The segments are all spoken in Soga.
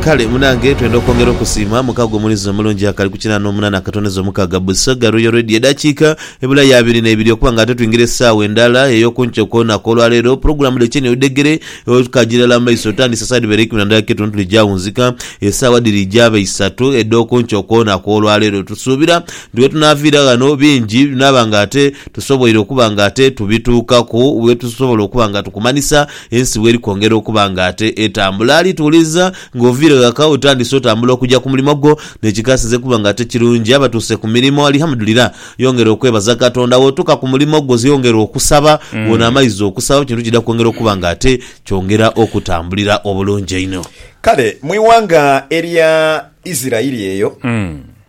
Kale munange twenda okwongera okusiima muka gwe mulizi omulungi akali ku kinana omunana akatondeza omukaga busoga royal radio edakika ebula ya abiri nebiri okuba nga ate twingira esaawa endala eyokunkyo kwonaku olwaleero pulogulamu dhe kyeni odhegere okajirala mu maiso otandise esaawa edhibere eikumi na ndala ke tuntu dhija wunzika esaawa dhiri jaba isatu edhokunkyo kwonaku olwaleero tusuubira nti wetunaviira ghano bingi binaba nga ate tusoboire okuba nga ate tubituukaku wetusobola okuba nga tukumanisa Ensi bw'eri kwongera okuba ng'ate etambula, alituwuliriza ng'oviire ghaka otandise otambula okugya ku mulimo gwo. N'ekikasinze kuba ng'ate kirungi, abatuuse ku mirimo, Alihamudulira, yongera okwebaza Katonda. Bw'otuuka ku mulimo gwo, yongera okusaba. Bw'onaamaliza okusaba, ekintu kidha kwongera okuba ng'ate kyongera okutambulira obulungi einho. Kale mu ighanga erya Isiraeli eyo.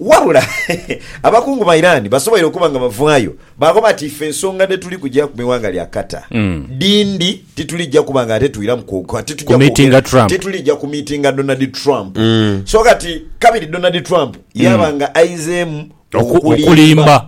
Wabula abakungu ba Iran basoboire okuba nga bavaayo baakoba ati ife ensonga dhetuli kujaku mu ighanga lya Qatar dhindi, titulija kuba nga ate twiramu kwoka, titujja Kumitinga kwogera, Trump. titulija kumitinga Donald Trump. So kati kabiri Donald Trump yaaba nga aizeemu Oku- okulimba.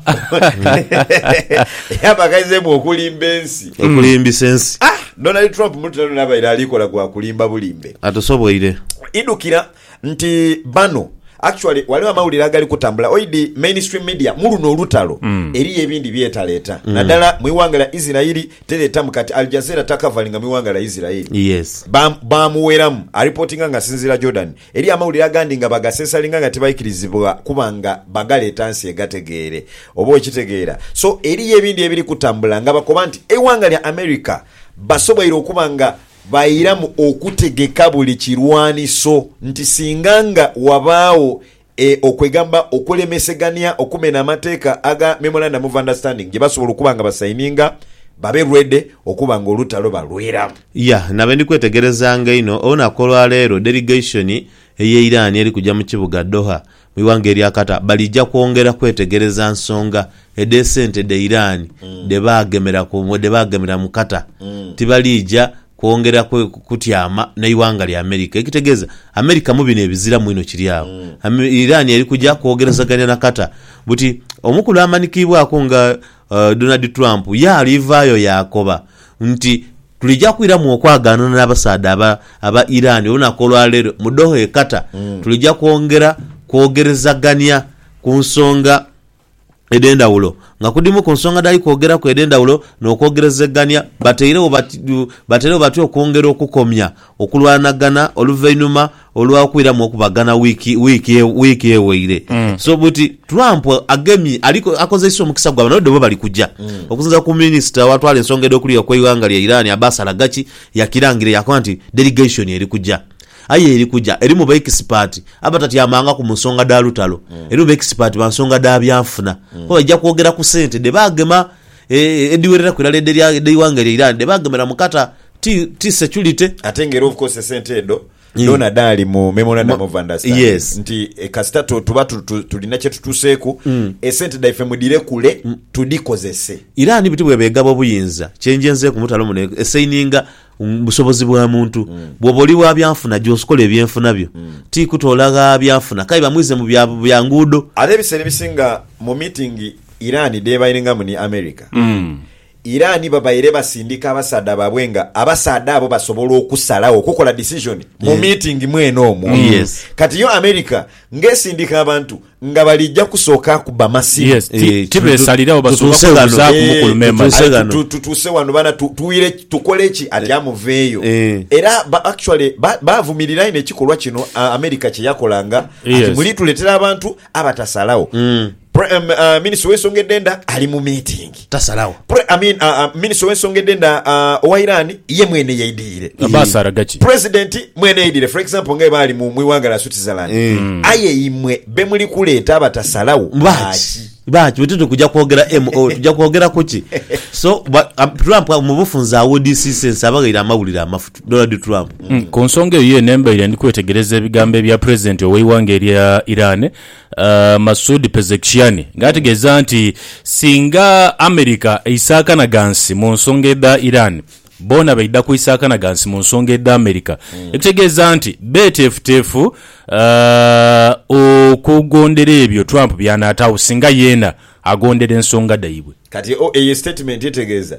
yaaba nga aizeemu okulimba ensi. okulimbisa ensi Ah, Donald Trump mulutalo luno abaire ali kola gwa kulimba bulimbe. atusoboire Idukira Nti bano actually waliwo amawulire agali kutambula oidi mainstream media muluno olutalo mm. eriyo ebindi byetaleta mm. nadala mwiwanga lya Israeli teretamu kati Al Jazeera takavalinga mwiwanga lya Israeli yes. bamuweramu ba aripotinga nga asinzira Jordan eriyo amawulire agandi nga bagasesalinga nga tibaikirizibwa kuba nga bagaleta nsi egategeere oba okitegeera so eriyo ebindi ebiri kutambula nga bakoba nti eiwanga lya America basoboire okuba nga Bairamu okutegeka buli kirwaniso nti singa nga wabaagho e okwegamba okulemesegania okumena amateeka aga Memorandum of Understanding gye basobola okuba nga basaininga, babe ready okuba nga olutalo balweramu. Ya na bendi kwetegerezanga einho olunaku olwa leero delegation eye Iran eri kuja mu kibuga Doha Mu ighanga erya Qatar balija kwongera kwetegereza nsonga edh'esente dhe Iran dhe baagemera ku dhe baagemera mu Qatar. Tibalija kwongera kwe kutyama na ighanga lya America. Ekitegeeza America mu bino ebiziramu inho kiri agho. Ame Iran eri kuja kwogerezagania na Qatar buti omukulu amanikiibwaku nga Donald Trump yaalwivaayo yaakoba nti, Tulija kwiramu okwagaanana n'abasaadha aba aba Iran olunaku olwa leero mu Doha e Qatar. Tulija kwongera kwogerezagania ku nsonga edh'endhawulo nga kudhimu ku nsonga dhali kwogeraku edh'endhawulo n'okwogerezegania. Batairegho batyo batyo okwongera okukomya okulwanagana oluvainhuma Olwakwiramu okubagana wiiki wiiki wiiki eweire, so buti Trump agemye ali akozeisa omukisa gwa bano dhobo bali kuja. Okusinzira ku minisita awatwala ensonga edh'okuliwa kw'eighanga lya Iran Abbas Araghchi yakirangira yakoba nti delegation eri kuja aye eri kuja erimu ba expert abatatyamangaku mu nsonga dha lutalo, erimu ba expert ba nsonga dha byanfuna kuba baija kwogera ku sente dhe bagema. edhiwereraku irala edh'eighanga eryo irani dhe baagemera mu kata. Ti, ti security. Ate nga era obukozesa sente edho dhoona dhaali mu Memorandum of Understanding Yes. nti eh, kasita tu- tuba tu- tu- tulina kye tutuuseeku, esente dhaife mudhire kule tudhikozese. Irani buti bw'eba egaba obuyinza, kye nje nzeeku mutalo muno e- esaininga busobozi bwa muntu. Bwoba oli wa byanfuna gye osikola ebyenfuna byo, ti kutoola gha byanfuna k'aye bamwize mu bya bya nguudo. Ate ebiseera ebisinga mu miitingi Iran dh'ebaingamu ni America, Iran babaire basindika abasaadha baabwe nga abasaadha abo basobola okusalagho okukola decision mu miitingi mwene omwo. Kati yo America ng'esindika abantu Nga balija kusooka kubba masimu. Yes, ti- Eh, tibesalirawo, tu- basooka tutuuse ghano. kwebuzaaku mukulu Eh, Meeman. tutuuse Aye ghano. tu- tu- tutuuse wano bana tu- tuwire ki- tukole ki ati amuveeyo Eh. era ba- actually ba- bavumirira ino ekikolwa kino a- america kyeyakolanga ati Yes. mulituletera abantu abatasalawo Pre- um, uh, minisita w'ensonga edh'enda ali mu meeting tasalagho. Pre, I mean, uh, uh, Minister w'ensonga edh'enda uh, owa Iran ye mwene yaidhirire. Baasaraga ki? President mwene yaidhirire. For example, nga baali mu iwanga lya Switzerland. Mm. Aye imwe be muli kuleeta abatasalagho baaki? Baaki? Bwe tuti kuja kwogera MO, tuja kwogera kuki? So, ba, um, Trump mu bufunze awodisiisa ensi abaghaire amawulire amafu, Donald Trump. Mm. Ku nsonga eyo yeene mbaire ndi kwetegereza ebigambo ebya President ow'eiwanga erya Iran, Masoud Pezeshkian nga ategeeza nti singa America eisaakana ghansi mu nsonga edha Iran, boona baidha kwisaakana ghansi mu nsonga edha America, ekitegeeza nti beeteefuteefu okugondera ebyo Trump by'anaataagho singa yeena agondera ensonga dhaibwe. Kati eyo sitatimenti etegeeza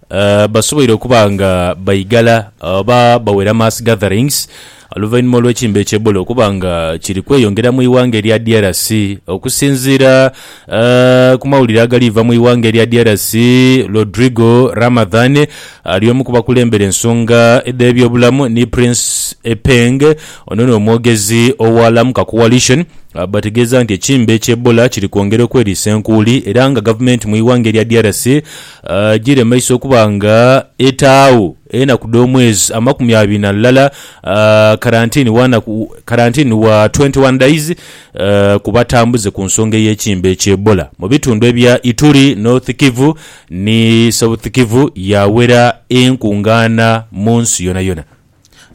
A Basoboire okuba nga baigala oba bawera mass gatherings oluvainhuma olw'ekimbe kya Ebola okuba nga kiri kweyongera mu ighanga erya DRC. Okusinziira ku mawulire agali va mu ighanga erya DRC, Rodrigo Ramadhan ali omu ku bakulembera ensonga edh'ebyobulamu ni Prince Epeng, ono n'omwogezi owa Lamuka Coalition bategeeza nti ekimbe kya Ebola kiri kwongera okweriisa enkuuli era nga gavumenti mu ighanga erya DRC, Giri mu maiso okuba nga etaagho enaku dh'omwezi amakumi abiri na lulala, karantini wa naku karantini wa 21 days, ku batambuze ku nsonga ey'ekimbe ekya Ebola mu bitundu ebya Ituri, North Kivu ni South Kivu yaawera enkungaana mu nsi yonayona.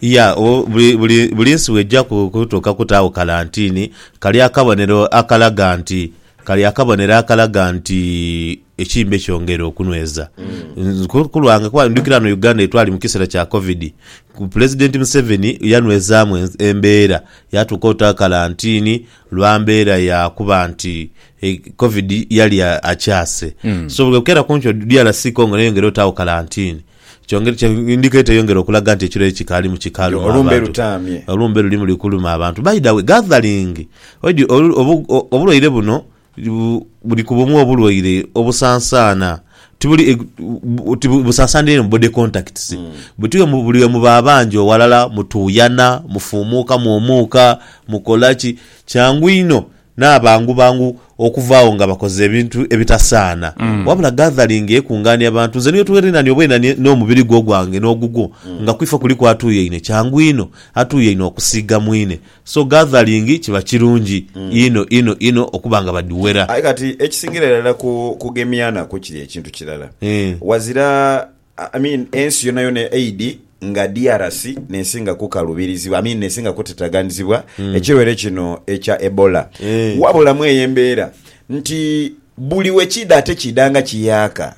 Ya, o, buli, buli, buli nsi bw'eija ku, kutuuka kutaawo kalantiini, kali akabonero akalaga nti, kali akabonero akalaga nti ekimbe kyongeire okunweza. Nze ku, ku lwange, kuba ndhukira ghano Uganda ye twali mu kiseera kya Covid, ku Pulezidenti Museveni yanwezaamu en, embeera, yaatuuka ota kalantiini lwa mbeera ya kuba nti e, Covid yali a, akyase. So bwe bukera ku nkyo DRC Congo n'eyongera otaawo kalantiini. Ndika eteyongera okulaga nti ekiro ekyo kikaali mu kikalu mu abantu. Olumbe luli muli kuluma abantu. By the way, gathering oidhi obulwaire buno buli ku bumu obulwaire obusansaana ti busansaanira inho mu body contacts buti buli we muba abangi oghalala mutuuyana, mufuumuukamu omuuka, mukola ki? Kyangu inho n'abangu bangu okuvaagho nga bakoze ebintu ebitasaana, wabula gathering ekungaania bantu. Nze niyo twerinhania obweinhanie n'omubiri gwo ogwange n'ogugwo, nga ku ife kuliku atuuyaine, kyangu inho atuuyaine okusiiga mwine. So gathering kiba kirungi inho inho inho okuba nga badhiwera. Aye kati ekisingira irala ku kugemyanaku kiri ekintu kirala, Eeh. ghazira I mean ensi yonayona eidhi nga DRC nesinga kukalubirizibwa I mean nesinga kutataganizibwa ekirwaire kino ekya Ebola wabula mweyo embeera nti buli wekiidha ate kiidha nga kiyaaka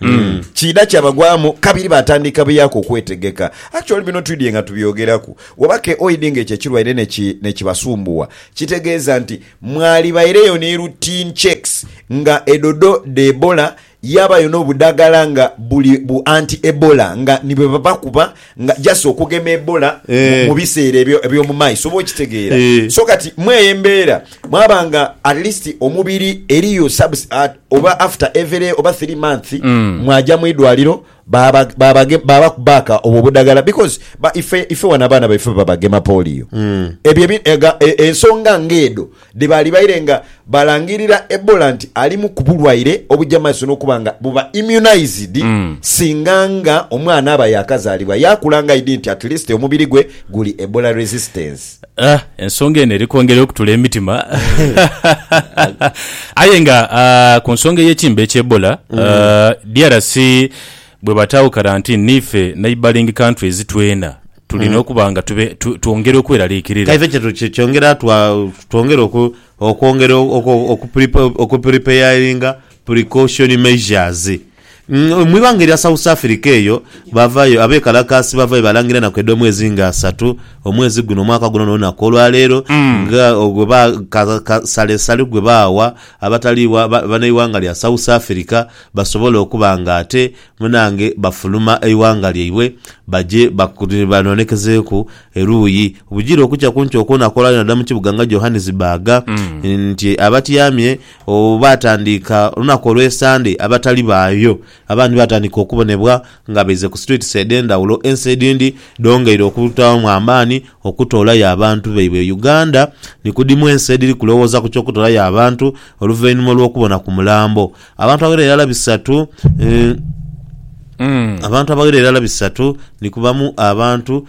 kiidha kyabagwamu kabiri batandika buyaaka okwetegeka actually bino twidhie nga tubyogeraku oba keoidhi nga ekyo ekirwaire neki nekibasumbuwa kitegeeza nti mwalibaireyo ni routine checks nga edhodho dha Ebola Yaabayo n'obudhagala nga buli bu anti Ebola nga ni bwe babakuba nga just okugema Ebola mu mu biseera ebyo eby'omu maiso. Oba okitegeera? So kati mw'eyo embeera mwaba nga at least omubiri eriyo subs, oba after every oba three months mwagya mu idwaliro Baba babage baba kubaka obwo obudagala because ba ife ife wano abaana baife babagema polio ebyo ebi ega e, ensonga nga edho dhebali baire nga balangirira Ebola nti alimu kubulwaire obuja maiso nokuba nga buba immunized singa nga omwana aba yakazalibwa yakula nga aidhi nti at least omubiri gwe guli Ebola resistant. Ah, ensonga eno eri kwongera okutula emitima aye nga ah, ku nsonga ey'ekimbe ekya Ebola mm. ah, DRC bwe bataawo karantini niife neighboring countries twena tulina mm. okuba nga twongera okweraliikirira kaife kye kyongera twongera okwongera okupuripeyaringa precaution measures Mu ighanga erya South Africa eyo bavayo abekalakaasi bavayo balangira enaku edh'omwezi nga asatu, omwezi guno, omwaka guno n'olunaku olwaleero nga ogwo ba ka ka salesale gwe baawa abatali wa ba banaighanga lya South Africa basobole okuba nga ate munange bafuluma eighanga lyaibwe baje baku banonekezeeku eruuyi bujire okukya kunkyo okw'olunaku olwaleero nadala mu kibuga nga Johannesburg nti abatyamye Obu baatandiika olunaku olw'Esande abatali baayo abandi baatandika okubonebwa nga baize ku streets edh'endhawulo ensi edhindi dhongeire okutaamu amaani okutoolayo abantu baibwe e Uganda ni ku dhimu ensi edhiri kulowooza ku ky'okutoolayo abantu oluvainhuma olw'okubona ku mulambo abantu abaghera irala bisatu abantu abaghera irala bisatu ni kubamu abantu